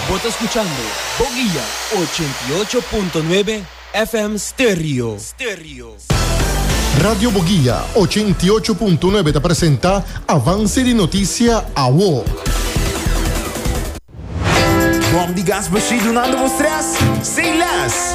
Bo ta skuchando Boguia ochenta i ocho punto nuebe FM Stereo. Radio Boguia ochenta i ocho punto nuebe ta presenta Avance di Noticia Awo. Bom di gas machine dunando bo stress sin les.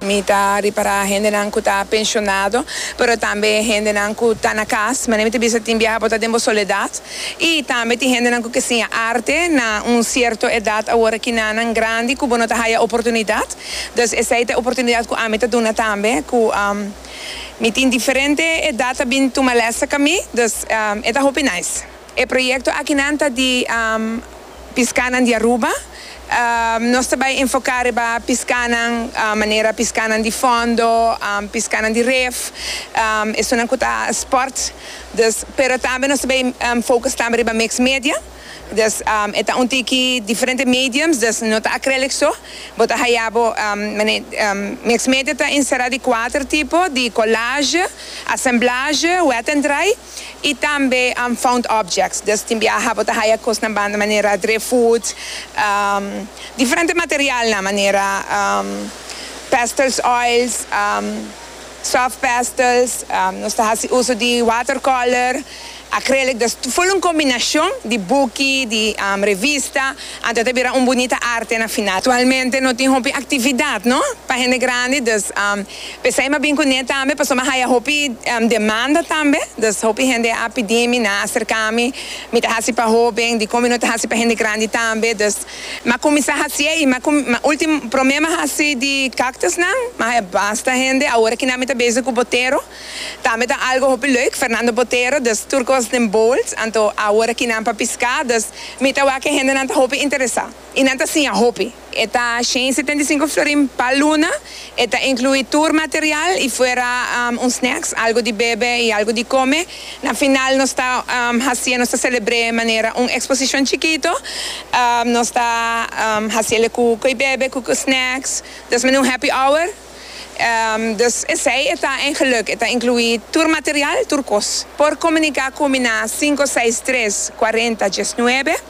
Mi ta ripará hendenan ku ta penshonado, pero tambe hendenan ku ta na kas. Manera mi ta bisa tin biaha bo ta den bo soledat. I tambe tin hendenan ku ke siña arte na un sierto edat awor kinanan grandi ku bo no ta haya oportunidat. Dus esei ta e oportunidat ku ami ta duna tambe ku mi tin diferente edat ta bin tuma lèsnan ka mi. Dus e ta hopi nice. E proyekto akinan ta di Piskánan di Aruba. Nos ta bai enfoká riba piskánan manera piskánan di fòndo, piskánan di ref, esunnan ku ta spòrt, dus pero tambe nos ta bai focus tambe riba mix media, dus e ta un tiki diferente mediums, dus no ta acrylic so, bo ta haya bo mix media ta enserá di kuater tipo, di collage, assemblage, wet and dry. y tambe unfound objects, dus tin biaha bo ta haya cosnan banda manera driftwood, diferente materialnan manera pastels oils, soft pastels, nos ta haci uso di watercolor, acrylic, dus full un combinacion di buki, di revista, anto ta bira un bunita arte na final. Actualmente no tin hopi actividad no pa hende grandi, dus. P'esei m'a bin kuné tambe pasobra m'a haya hopi demanda tambe. Dus hopi hende a pidi mi, nan a serká mi. Mi ta hasi pa hóben, dikon mi no ta hasi pa hende grandi tambe. Dus m'a kuminsá hasié i m'a ultimo, promé m'a hasi di káktusnan, m'a haya basta hende. Awor aki nan mi ta bezig ku Botero. Tambe ta algu hopi leuk, Fernando Botero. Dus tur kos den bols. Anto awor aki nan pa piská. Dus mi ta wak ke hendenan ta hopi interesá. I nan ta siña hopi. E ta shen i setenta i sinku florin pa luna. E ta inkluí tur material i fuera un snacks, algu di bebe i algu di kome. Na final nos ta hasié, nos ta selebr'é manera un eksposishon chikito. Nos ta hasié le ku ko'i bebe, ku ko'i snacks. Des manera un happy hour. Dus esei e ta en geluk. E ta inkluí tur material, tur kos. Por komuniká ku mi na sinku seis tres kuarenta diesnuebe.